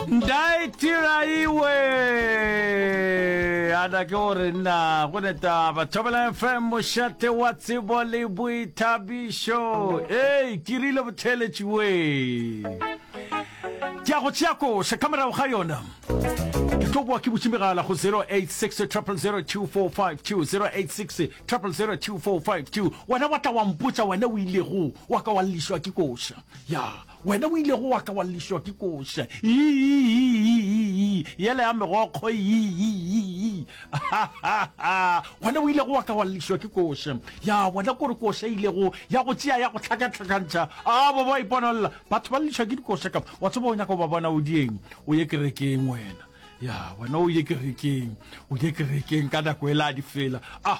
ndaetiraiwe ana ke gore nna go neta bathobela fm mošate wa tsebo le boithabišo ee ke rile botheletšiwe ke a go tšea koša ka morago ga yona ke tlo boa ke butše megala go 086 086 086 wena wa tla wa mpotsa wena o ilego wa ka wa lešwa ke koša ya Wena o ilego wa ka wa llišwa ke koša, iiiiiiii, yela ya megokgo, iiiiiiii, hahaha, gona o ilego wa ka wa llišwa ke koša. Ya bona kore koša e ilego ya go tšea ya go hlakahlakantšha, a ba ba iponolla, batho ba llišwa ke dikoša ka. Wa tseba o nyaka go ba bona o dieng? O ye kerekeng wena. Ya bona o ye kerekeng, o ye kerekeng ka nako e la di fela. Ah!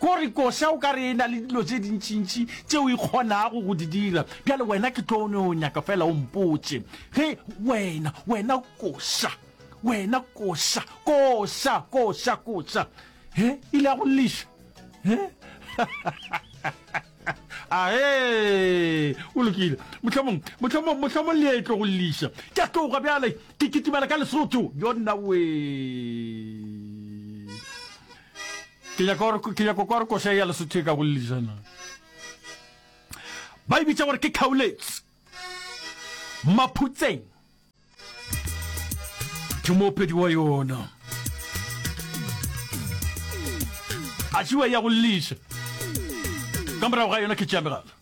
Ko re koša o ka re e na le dilo tše dintšintši tšeo e kgonago go di dira. Bjale wena ke tlo no nyaka fela o mpotše ge wena, wena koša, wena koša, koša, koša, koša. He, ile a go lliša. He? Ahe, o lokile. Mohlomong, mohlomong, mohlomong le etlo go lliša. Ke a tloga bjale, ke kitimela ka Lesotho. Yona wee. Ke nyaka gore ke nyaka kwa re koša ya lesotho e ka go lejana. Ba ibitsa gore ke khauletse. Maphutseng. Ke mopedi wa yona. A tšiwa ya go lisa. Ka morago ga yona ke tša megala.